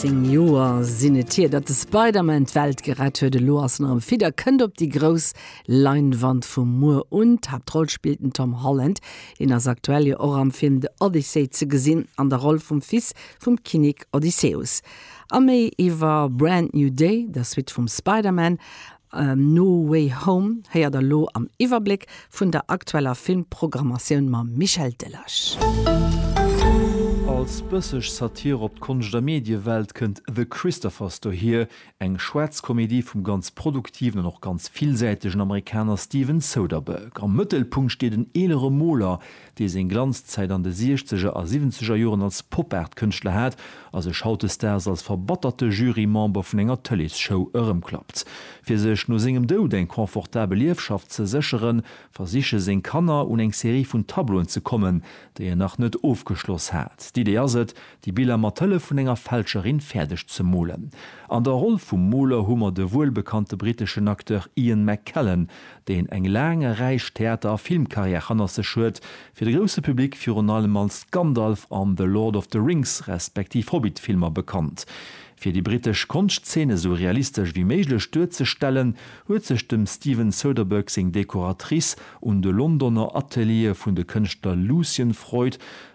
Zéng Joer sinn et hier, datt de Spider-Man d'Welt gerett huet. Elo ass en erëm fit a kënnt op déi grouss Leinwand vu muer un. D'Haaptroll spillt den Tom Holland. Hien ass aktuell jo och am Film The Odyssey ze gesinn, an der Roll vum Fils vum Kinnek Odysseus. A méi iwwer Brand New Day, der Suite vum Spider-Man, No Way Home héiert der elo am Iwwerbléck vun der aktueller Filmprogrammatioun mam Michel Delage. Als bësseg Satire op d'Konscht a Mediewelt kënnt The Christophers dohier, eng schwaarz Komedie vum ganz produktiven an och ganz villsäitegen Amerikaner Steven Soderbergh. Am Mëttelpunkt steet en eelere Moler, dee seng Glanzzäit an de Siechzeger a Siwwenzeger Joren als Pop-Art-Kënschtler hat a sech hautdesdaags als verbatterte Jury-Member vun enger Tëleesshow erëmklappt. Fir sech no sengem Doud eng confortabel Ierfschaft ze sécheren, versiche seng Kanner un eng Serie vun Tableauen ze kommen, déi en nach net ofgeschloss hat. D'Idee ass et, déi Biller mat Hëllef vun enger Fälscherin fäerdeg ze molen. An der Roll vum Moler hu mer de wuelbekannte britteschen Acteur Ian McKellen, deen eng laang a räich Theater a Filmcarrière hannert sech huet, fir de grousse Public virun allem als Gandalf an The Lord of the Rings respektiv Hobbit-Filmer bekannt. Fir déi brittesch Konschtzeen esou realistesch wéi méiglech duerzestellen, huet sech dem Steven Soderbergh seng Dekoratrice un de Londoner Ateliere vun de Kënschtler Lucian Freud,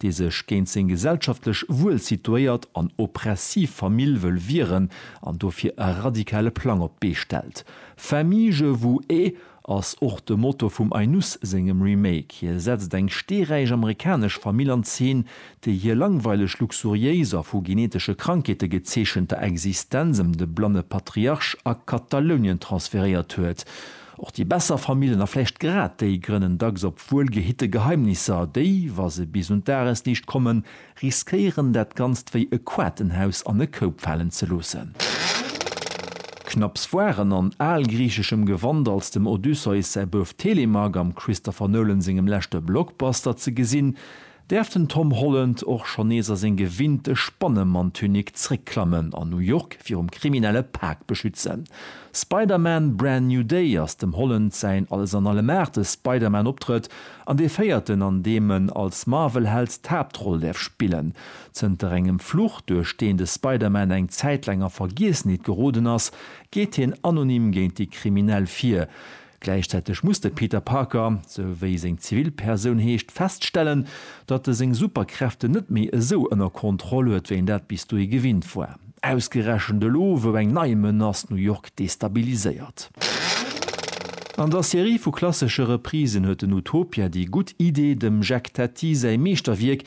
dee sech géint seng gesellschaftlech wuel situéiert an oppressiv Famill wëll wieren an dofir e radikale Plang op d'Bee stellt. Famille je vous ai ass och de Motto vum Ainus sengem Remake. Hie setzt eng steeräich amerikanesch Famill an Zeen, déi hir langweileg, luxuriéis a vu genetesche Krankheete gezeechenter Existenz ëm de blanne Patriarch a Katalounien transferéiert huet. Och déi besser Famillen, a vläicht grad déi, grënnen dacks op wuel gehitte Geheimnisser, déi, wa se bis un d'Dagesliicht kommen, riskéieren dat Ganzt wéi e Quatenhaus an e Koup falen ze loossen. Knapps waren an algriicheschem Gewand als dem Odysseus säi Bouf Telemach am Christopher Nolan sengem leschte Blockbuster ze gesinn, Däerf den Tom Holland och schonn nees a seng gewinnte Spannemanntunik zréckklammen an New York virum kriminelle Pak beschützen? Spider-Man, Brand New Day ass dem Holland säin Alles-an-Allem-Aartes Spider-Man-Optrëtt an dee véierten, an deem en als Marvel-Held d'Haaptroll däerf spillen. Zënter engem Fluch, duerch deen de Spider-Man eng Zäit laang a Vergiessenheet geroden ass, geet hien anonym géint déi Kriminell vir. Gläichzäiteg muss de Peter Parker, sou wéi seng Zivilpersoun heescht, feststellen, datt e seng Superkräften net méi esou ënner Kontroll huet, wéi en dat bis dohi gewinnt war. Ausgerechent elo, wou eng nei Menace New York destabiliséiert. An der Serie vu klassesche Reprisen huet den Utopia déi gutt Idee, dem Jacques Tati säi Meeschterwierk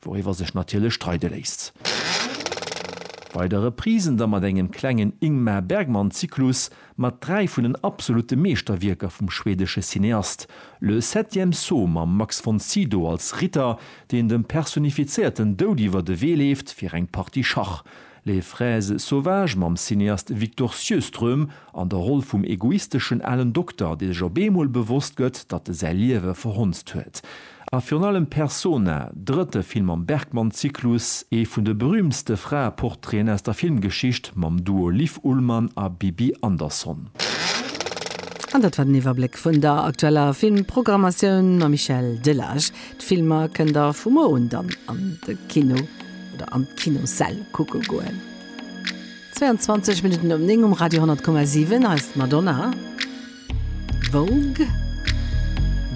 Wouriwwer sech natierlech streide léisst. Bei der Reprise da mat engem klengen Ingmar Bergman-Zyklus mat dräi vun den absolute Meeschterwierker vum schweedesche Cineast, Le septième saut mam Max von Sydow als Ritter, deen dem personifizéierten Doud iwwer de Wee leeft fir eng Partie Schach. Les fraises sauvages mam Cineast Victor Sjöström an der Roll vum egoisteschen alen Dokter, dee sech op eemol bewosst gëtt, datt e säi Liewe verhonzt huet. A virun allem Persona, drëtte Film am Bergman-Zyklus, ee vun de berüümtste Fraeportraiten aus der Filmgeschicht, mam Duo Liv Ullmann a Bibi Andersson. An dat war den Iwwerbléck vun der aktueller Filmprogrammatioun mam Michel Delage. D'Filmer kënnt der vu muer un dann an de Kino. oder an d'Kinossäll kucke goen. 22 Minutten um 9 um Radio 10,7. Hei ass d'Madonna. Vogue.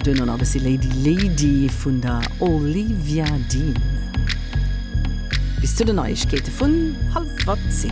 Duerno nach e bëssi Lady Lady vun der Olivia Dean. Bis zu den Neiegkeete vun halwer 10.